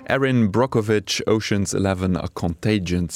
Erin Brockovich, Ocean's Eleven a Contagion,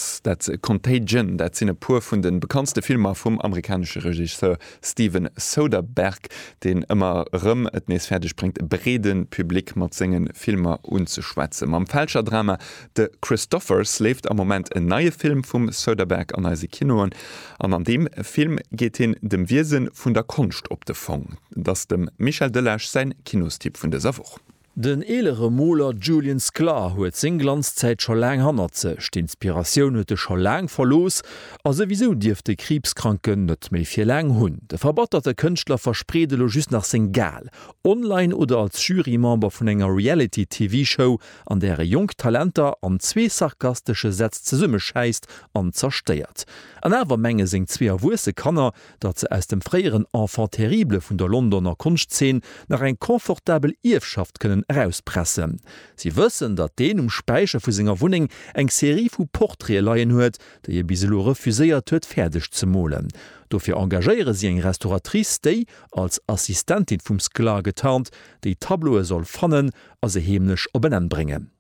dat sinn e puer vun de bekanntste Filmer vum amerikanesche Regisseur Steven Soderbergh, deen ëmmer erëm et nees fäerdeg bréngt, e breede Public mat senge Filmer unzeschwätzen. Mam Fälscher-Drama De Christophers leeft am Moment en neie Film vum Soderbergh an eise Kinoen an an deem Film geet hien dem Wiese vun der Konscht op de Fong. Et ass dem Michel Delage säin Kinostipp vun dëser Woch. Den eelere Moler Julian Sclar huet seng Glanzzäit scho laang hannert sech. D'Inspiratioun huet e scho laang verlooss a souwisou dierft de Kriibskranken net méi fir laang hunn. De verbatterte Kënschtler verspreet elo just nach seng Gale, online oder als Jury-Member vun enger Reality-TV-Show, an där e jonk Talenter an zwee sarkastesche Sätz zesummeschäisst an zerstéiert. An awer menge seng zwee erwuesse Kanner, datt se aus dem fréieren Enfant terrible vun der Londoner Konschtzeen nach eng confortabel Ierfschaft kënnen erauspressen. Si wëssen, datt deen um Späicher vu senger Wunneng eng Serie vu Portraite leien huet, déi e bis elo refuséiert huet fäerdeg ze molen. Dofir engagéiere si eng Restauratrice, déi, als Assistentin vum Sklar getarnt, déi Tableaue soll fannen a se heemlech op en Enn bréngen.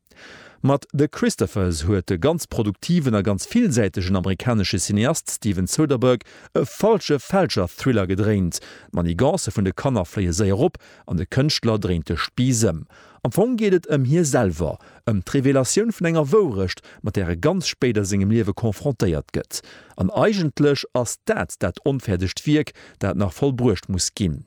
Mat The Christophers huet de ganz produktiven a ganz villsäitegen amerikanesche Cineast Steven Soderbergh e falsche Fälscher-Thriller gedréint. D'Manigancë vun de Kanner fléie séier op an de Kënschtler dréint de Spiiss ëm. Am Fong geet et ëm hie selwer, ëm d'Revelatioun vun enger Wourecht, mat där e ganz spéit a sengem Liewe konfrontéiert gëtt. An eigentlech ass dat dat onfäerdegt Wierk, dat nach vollbruecht muss ginn.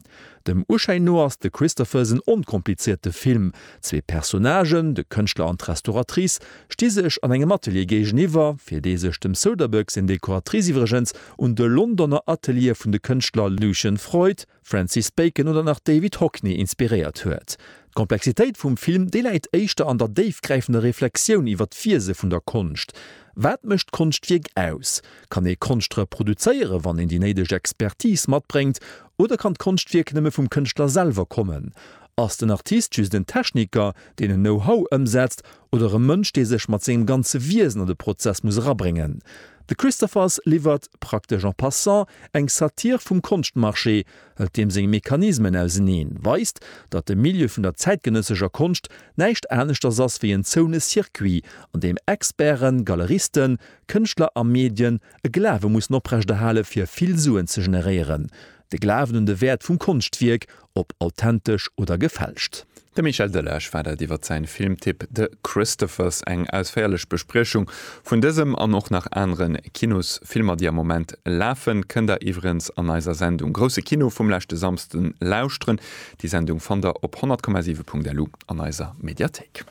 Dem Uschéin no ass de Christopher's en onkomplizéierte Film. Zwee Personnagen, de Kënschtler an d'Restauratrice, sti sech an engem Atelier géigeniwwer, fir dee sech dem Soderbergh seng Dekoratrice iwwregens un de Londoner Ateliere vun de Kënschtler Lucian Freud, Francis Bacon oder nach David Hockney inspiréiert huet. D'Komplexitéit vum Film, déi läit éischter an der déifgräifender Reflexioun iwwer d'Wiese vun der Konscht. Wat mécht d'Konschtwierk aus? Kann ee Konscht reproduzéieren, wann een déi néideg Expertise matbréngt? Oder kann d'Konschtwierk nëmme vum Kënschtler selwer kommen? Ass den Artist just en Techniker, deen en Know-how ëmsetzt, oder e Mënsch, dee sech mat sengem ganze Wiesen an de Prozess muss erabréngen? The Christophers liwwert, praktesch en passant, eng Satire vum Konschtmarché, hëlt deem seng Mechanismen auseneen, weist, datt de Milieu vun der zäitgenëssescher Konscht näischt aneschters ass wéi en zoune Circuit, an deem Experten, Galeristen, Kënschtler a Medien e Glawe mussen oprechterhale fir vill Suen ze generéieren, de Glawen un de Wäert vum Konschtwierk, ob authentesch oder gefälscht. De Michel Delage war dat iwwer säin Filmtipp The Christophers. Eng ausféierlech Bespriechung vun dësem an och nach aneren Kinosfilmer déi am Moment lafen kënnt der iwwerens an eiser Sendung Grousse Kino vum leschte Samsden lauschteren. Déi Sendung fannt der op 100,7.lu an eiser Mediathéik.